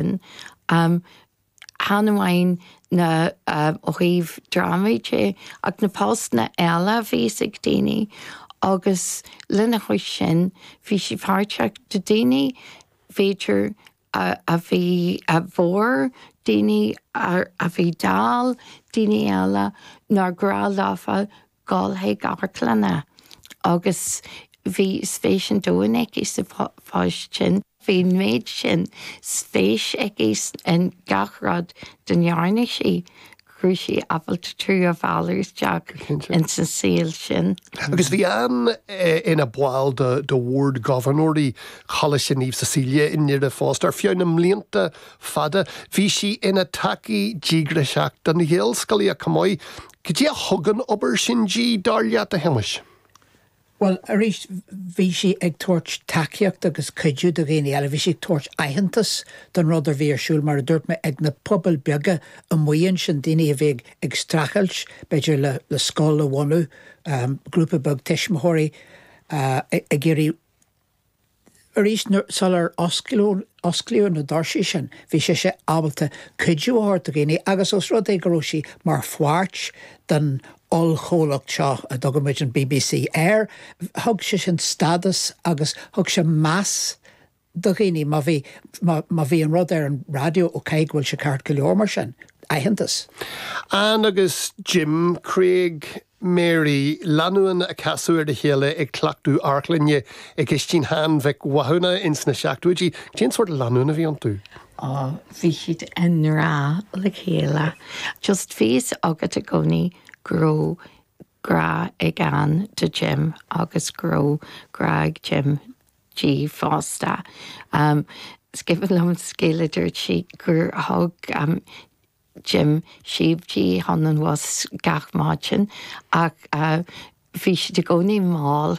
sin. Chan amháin ó thaobh drámaí de ach na postanna eile a bhíos ag daoine agus lena chois sin bhí sí páirteach do dhaoine b'fhéidir a bhí bodhar daoine a bhí dall daoine eile nár ghnách leofa ghabháil chuig amharclanna agus bhí spéis an domhain aici sa phost sin. Bhí an méid sin spéis aici in gach rud dá ndearna sí go raibh sí ábalta tú a mhealladh isteach ins an saol sin. Agus bhí Ann ina ball de bhord gobharnóirí Choláiste Naomh Cecilia i nDoire fosta ar feadh na mblianta fada. Bhí sí ina tacaí díograiseach don Ghaelscolaíocht chomh maith Cad é a thug an obair sin di, dar leat, a Shéamais? Bhuel, arís, bhí sí ag tabhairt tacaíochta agus cuidiú do dhaoine eile. Bhí sí ag tabhairt aitheantas don rud a bhí ar siúl, mar a dúirt mé, ag na pobail beaga amuigh ansin, daoine a bhí ag streachailt, b'fhéidir, le scoil a bhunú, grúpa beag tuismitheoirí ag iarraidh Arís sular osclaíodh na doirsí sin bhí sise ábalta cuidiú a thabhairt do dhaoine agus os rud é go raibh sí mar pháirt den ollchomhlacht seo a dtugann muid an bbc air, thug sé sin stádas agus thug sé meas do dhaoine. Má bhí, má bhí an rud ar an raidió, ok, go bhfuil sé ceart go leor mar sin, aitheantas. Ann agus Jim Craig Mary, lánúin a casadh ar a chéile ag cleachtadh amharclainne i gcistín Sheáin Mhic Mhathúna ins na seachtóidí. Cén sórt lánúin a bhí iontu? Ó, bhí siad i ngrá le chéile. Just bhí a fhios agat i gcónaí go raibh grá ag Ann do Jim agus go raibh grá ag Jim di fosta. Is cuimhin liom scéal a dúirt sí gur thug. Jim síob di chun an bhus gach maidin ach bhí siad i gcónaí mall.